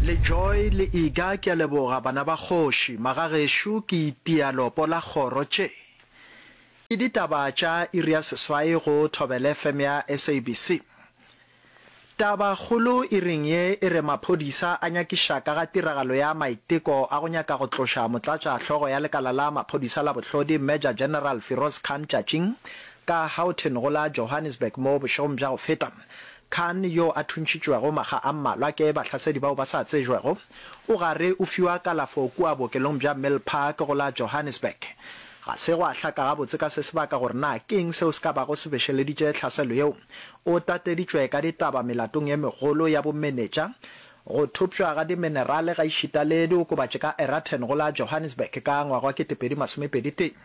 Le Joy le Iga ke a leboga bana ba kgoši, magagešo ke itia lopo la kgoro tše ke ditaba tša iri ya seswai go Thobele FM ya SABC. Taba kgolo iring ye e re maphodisa a nyakiša ka ga tiragalo ya maiteko a go nyaka go tloša motlatša hlogo ya lekala la maphodisa la bohlodi Major General Firoz Khan Tšatšing ka Houghton go la Johannesburg mo bošegong bja go feta Khan yo a thuntšhitšwego makga a mmalwa ke bahlasedi bao ba sa tsejwego, o gare o fiwa kalafo kua bookelong bja Milpark go la Johannesburg. Ga se gwa hlaka gabotse ka se sebaka gore na ke'ng seo se ka bago se bešeleditše tlhaselo yeo. O tateditšwe ka ditaba melatong ye megolo ya bomenetša, go thopšwa ga diminerale gaešita le diokobatši ka Eraten go la Johannesburg ka ngwaga wa 2021.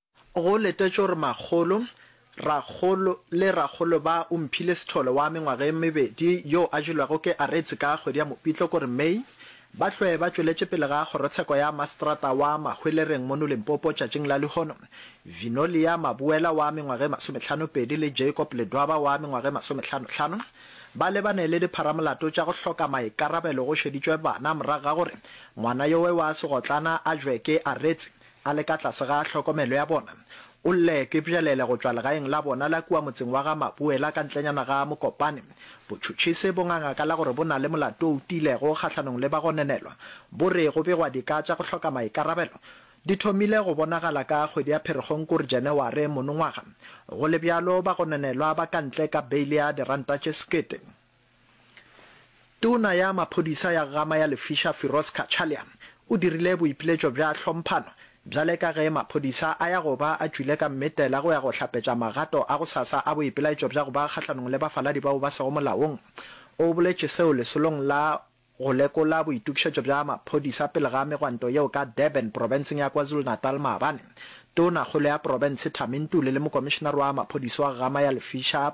Go letetšwe gore makgolo, rakgolo le rakgolo ba omphile sethole wa mengwaga e mebedi yo a jelwego ke aretse ka kgwedi ya Mopitlokore, May, ba hlwe ba tšweletše pele ga kgorotsheko ya maseterata wa Mahwelereng mono Limpopo tšatšing la lehono. Vinolia Mabuela wa mengwaga e masometlhanopedi le Jacob Ledwaba wa mengwaga e masometlhanotlhano ba lebane le dipharamolato tša go hloka maikarabelo go šeditšwe bana morago ga gore ngwana yowe wa segotlana a jwe ke aretse a le ka tlase ga hlokomelo ya bona, o lle ke bjalele go tšwa legaeng la bona la kua motseng wa ga Mabuela ka ntlenyana ga Mokopane. Botšhotšhisi bo ngangakala gore bo na le molato o tiilego kgahlanong le bagononelwa, bo re go begwa dika tša go hloka maikarabelo di thomile go bonagala ka kgwedi ya Pherekgong kore Janeware monongwaga. Go le bjalo, bagononelwa ba ka ntle ka beile ya diranta tše sekete. Tona ya maphodisa ya Ggama ya Lefisha Firoz Cachalia o dirile boipiletšo bja hlomphano bjale ka ge maphodisa a ya go ba a tšwile ka mmetela go ya go hlapetša magato a gosasa a boipelaetšo bja go ba kgahlanong le bafaladi bao ba sego molaong. O boletše seo lesolong la go lekola boitokišetšo bja maphodisa pele ga megwanto yeo ka Durban profenseng ya KwaZulu-Natal maabane. Tona kgolo ya profense Thami Ntuli le mokomišenare wa maphodisa wa Ggama ya Lefisha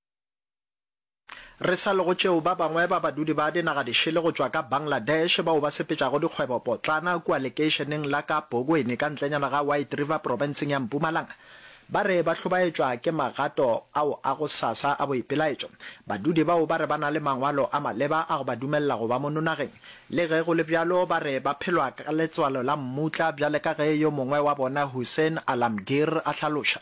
Re sa lego tšeo, ba bangwe ba badudi ba dinagadišele go tšwa ka Bangladesh bao ba sepetšago dikgwebopotlana kua lekeišeneng la ka Bogweni ka ntlenyana ga White River profenseng ya Mpumalanga ba re ba hlobaetšwa ke magato ao a go sasa a boipelaetšo. Badudi bao ba re ba na le mangwalo a maleba a go ba dumelela go ba mono nageng. Le ge go le bjalo, ba re ba phelwa ka letswalo la mmutla, bjale ka ge yo mongwe wa bona Hussain Alamgir a hlaloša.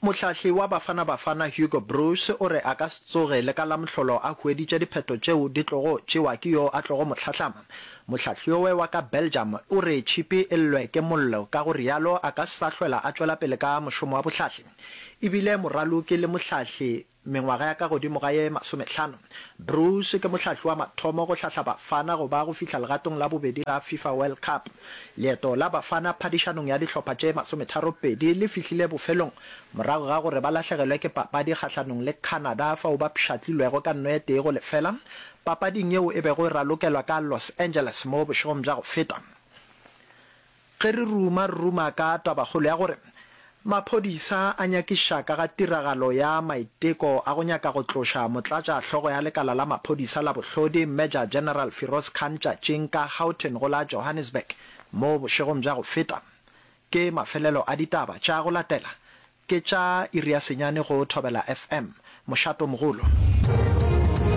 Mohlahli wa Bafana Bafana Hugo Broos o re a ka se tsoge le ka Lamhlolo a hueditše diphetho tšeo di tlogo tšewa ke yo a tlogo mo hlahlama. Mohlahlioe wa ka Belgium o re tšhipi e llwe ke mollo ka go realo a ka sa hlwela a tšwela pele ka mošomo wa bohlahli. E bile moraloki le mohlahli Mengwaga ya ka godimo ga ye masomehlano, Broos ke mohlahli wa mathomo go hlahla Bafana go ba go fihla legatong la bobedi la Fifa World Cup. Leeto la Bafana phadišanong ya dihlopha tše masometharopedi le fihlile bofelong morago ga gore ba lahlegelwe ke papadi kgahlanong le Canada fao ba pshatlilwego ka nnoetee go lefela papading yeo e bego e ralokelwa ka Los Angeles mo bošegong bja go feta. Ge re ruma, re ruma ka tabakgolo ya gore maphodisa a nyakiša ka ga tiragalo ya maiteko a go nyaka go tloša motlatša hlogo ya lekala la maphodisa la bohlodi Major General Firoz Khan tšatšing ka Houghton go la Johannesburg mo bošegong bja go feta. Ke mafelelo a ditaba tša go latela. Ke tša iri ya senyane go Thobela FM. Mošato mogolo.